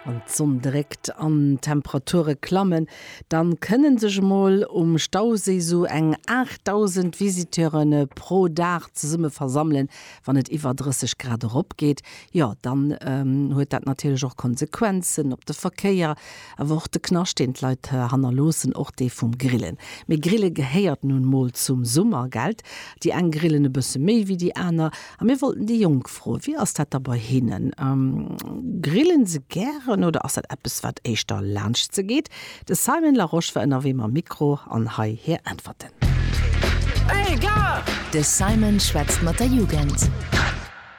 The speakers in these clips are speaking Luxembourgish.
Wann d'Sonn dréckt an d'Temperature klammen, dann kënnen sech emol um Stauséi sou eng 8.000 Visiteure pro Dag zesumme versammelen. Wann et iwwer 30 Grad erop geet, jo dann huet dat natierlech och Konsequenzen op de Verkéier, awer och de Knascht deen d'Leit hannerloossen, och dee vum Grillen. Mee Grille gehéiert nun mol zum Summer, gellt? Déi eng grillen e bësse méi wéi déi aner. A mir wollten déi Jonk froen, wéi ass dat da bei hinnen? Grillen se gären oder ass dat eppes, wat éischter laanscht se geet? De Simon Larosche war ënnerwee mam Mikro an hei hir Äntwerten. De Simon schwätzt mat der Jugend.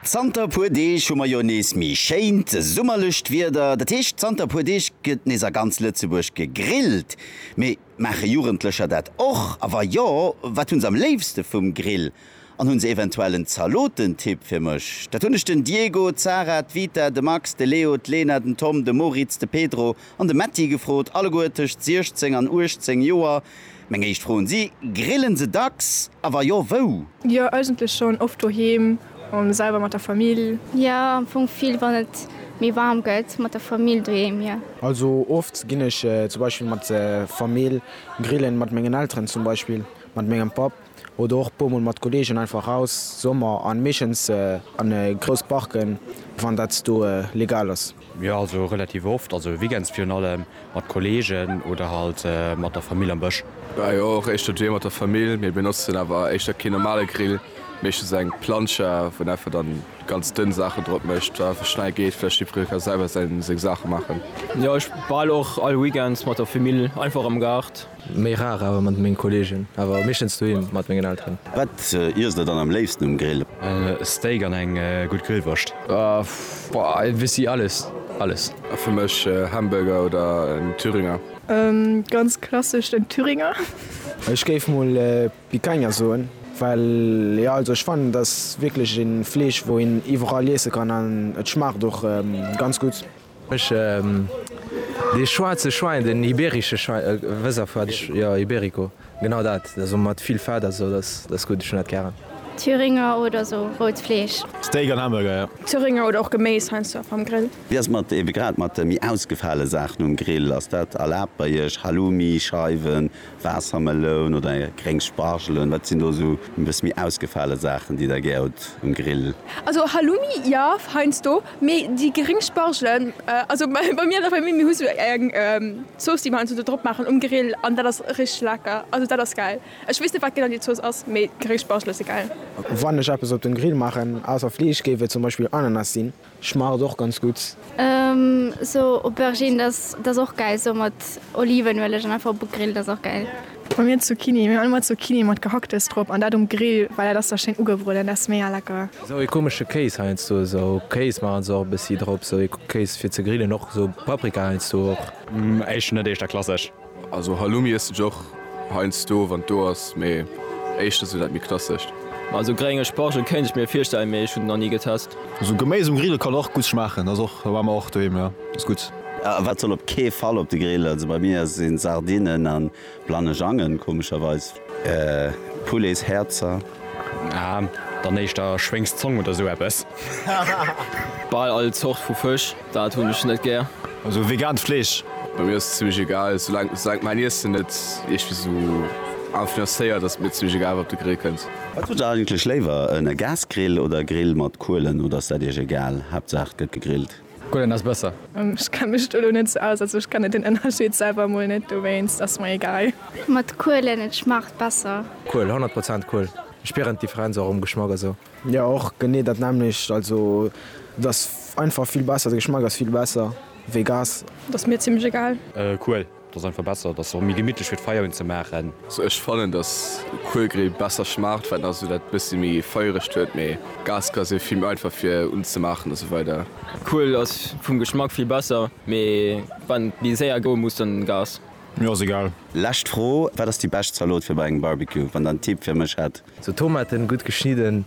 Zanter e puer Deeg hu mer jo nees méi schéint summerlecht Wieder. Dat heescht, zanter e puer Deeg gëtt nees a ganz Lëtzebuerg gegrillt. Mee Maache Jugendlecher dat och? A wa jo, wat hunn se am léifste vum Grill? An hunn se eventuell en Zalotentipp fir mech? Dat hunn ech den Diego, d'Sarah, d'Vita, de Max, de Leo, d'Lena, den Tom, de Moritz, de Pedro an de Metti gefrot, alleguer tëscht 16 an 18 Joer. Meng éischt Fro un si, Grillen se dacks? A wa jo, wou? Jo, eigentlech schonn oft doheem. An selwer mat der Famill? Jo, am Fong vill wann et méi waarm gëtt, mat der Famill doheem, jo. Also oft ginn ech zum Beispill mat der Famill grillen, mat mengen Elteren zum Beispill, mat mengem Papp oder och e puer mol mat Kollegen einfach raus, Sommer an meeschtens an grouss Parken, wann dat do legal ass. Jo also relativ oft, also weekends virun allem mat Kollegen oder halt mat der Famill am Bësch. Bah jo och éischter doheem mat der Famill, mee benotzen awer éischter keen normale Grill, meeschtens eng Plancha wou en einfach dann ganz dënn Saachen drop mécht, wat einfach schnell geet, vläicht jiddweree ka selwer seng Saache maachen. Jo ech bal och all weekends mat der Famill einfach am Gaart. Méi rar awer mat mengen Kollegen, awer meeschtens doheem mat mengen Elteren. Wat iess der dann am léifsten um Grill? Steak an eng gutt Grillwurscht. Boah e bessi alles, alles. Fir mech Hamburger oder en Thüringer. Ganz klassesch den Thüringer. Ech géif mol Picanha soen, well jo also ech fannen et ass wierklech een Fleesch wou een iwwerall iessen kann an et schmaacht och ganz gutt. Ech dee schwaarze Schwein, den iberische Schwein, wëss a wat ech, jo, iberico, genau dat, esou mat vill Fett a sou, dat ass gutt, ech hunn dat gären. Thüringer oder sou rout Fleesch. Steak an Hamburger, jo. Thüringer oder och Geméis heiansdo einfach am Grill. Wéi ass mat, ebe grad mat de méi ausgefale Saachen um Grill, ass dat erlaabt bei iech, Halloumi, Scheiwen, Waassermeloun oder gréng Spargelen, wat sinn do esou e bësse méi ausgefale Saachen, déi der gär hutt um Grill? Also Halloumi jo, heiansdo, mee déi gréng Spargelen, also bei mir an der Famill, mir hu sou eng Zooss, déi mer heiansdo do drop maachen um Grill an dat ass richteg lecker. Also dat ass gäil. Ech weess net, wat genau déi Zooss ass, mee gréng Spargele si gäil. Wann ech eppes op den Grill maachen, ausser Fleesch, géif et zum Beispill Ananas sinn. Schmaacht et och ganz gudd. Sou Aubergine dat ass och gäil sou mat Olivenueleg an einfach op e Grill, dat ass och gäil. Bei mir Zucchini, mir hunn allemool Zucchini mat Gehacktes drop an dat um Grill well dat ass da schéin ugebrueden, dat ass mega lecker. Sou ee komesche Kéis heiansdo, sou Kéis maachen se och e bëssi drop, sou ee Kéis fir ze grillen, och sou Paprika heiansdo och. Eischter net, eischter klassesch. Also Halloumi iessen ech och heiansdo wann et do ass, mee éischter sou dat méi klassescht. Also grénge Spargel kéint ech mir virstellen, mee ech hunn en nach ni getest. Sou Geméis um Grill kann och gutt schmaachen, ass och, war mer och doheem, jo ass gutt. Wat soll op kee Fall op de Grill, also bei mir sinn Sardinen an Blanejangen komescherweis. Poulets Häerzer. Ah, dann éischter Schwéngs Zong oder sou eppes. Bal all Zort vu Fësch, dat hunn ech net gär. Also vegaant Fleesch. Bei mir ass et zimlech egal, soulank mäin Iessen net iergwéi sou influencéiert, ass et mir zimlech egal wat op de Grill kënnt. Wat hutt der eigentlech léiwer, e Gasgrill oder e Grill mat Kuelen, oder ass dat iech egal, Haaptsaach et gëtt gegrillt? Gullen ass besser. Ech kenne mech do elo net sou aus, also ech kenne den Ënnerscheed selwer emol net, dowéinst ass mer egal. Mat Kuelen, et schmaacht besser. Kuel, 100 Prozent Kuel. Ech spieren d'Differenz och um Geschmack a sou. Jo och genee dat nämmlecht, also et ass einfach vill besser, de Geschmack ass vill besser wéi Gas. Ass mir zimmlech egal. Kuel. Et ass einfach besser, et ass och méi gemittlech fir d'Feier un ze maachen. Also ech fannen dass Kuelgrill besser schmaacht well also dat bessi méi feierecht huet mee Gas ka se vill méi einfach fir un ze maachen a sou weider. Kuel ass vum Geschmack vill besser mee wann et méi séier goe muss dann Gas. Mir ass egal. Lescht Fro, wat ass déi bescht Zalot fir bei engem Barbecue? Wann der en Tipp fir mech hätt? Sou Tomaten gudd geschnidden.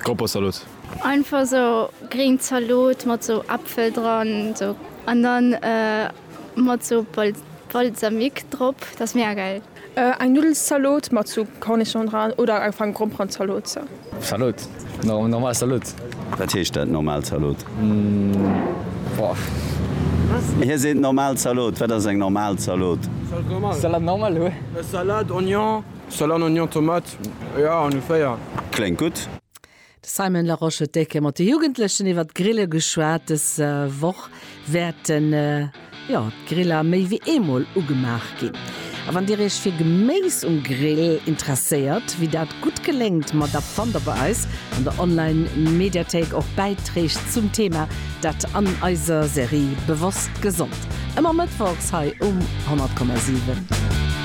Grappersalot. Einfach esou gréng Zalot mat esou Äpfel dran esou an dann mat esou Balsamique drop, dat ass mega gäil. Eng Nuddelzalot mat esou Cornichon dran oder einfach eng Gromperenzalot esou. Zalot, normal Zalot. Wat heescht dat, normal Zalot? Hie seet normal Zalot. Wat ass eng normal Zalot? Salade normale. Salade, Oignon. Salat, Oignon, Tomate, jo ongeféier. Kléngt gutt. De Simon Larosche huet décke mat de Jugendlechen iwwert d'Grille geschwat. Dës Woch wäerten jo d'Griller méi wéi eemol ugemaach ginn. A wann Dir Iech fir Geméis um Grill interesséiert, wéi dat gutt geléngt, ma da fannt Der bei eis an der Online Mediathéik och Bäitreeg zum Thema, dat an eiser Serie Bewosst Gesond, ëmmer mëttwochs hei um 100,7.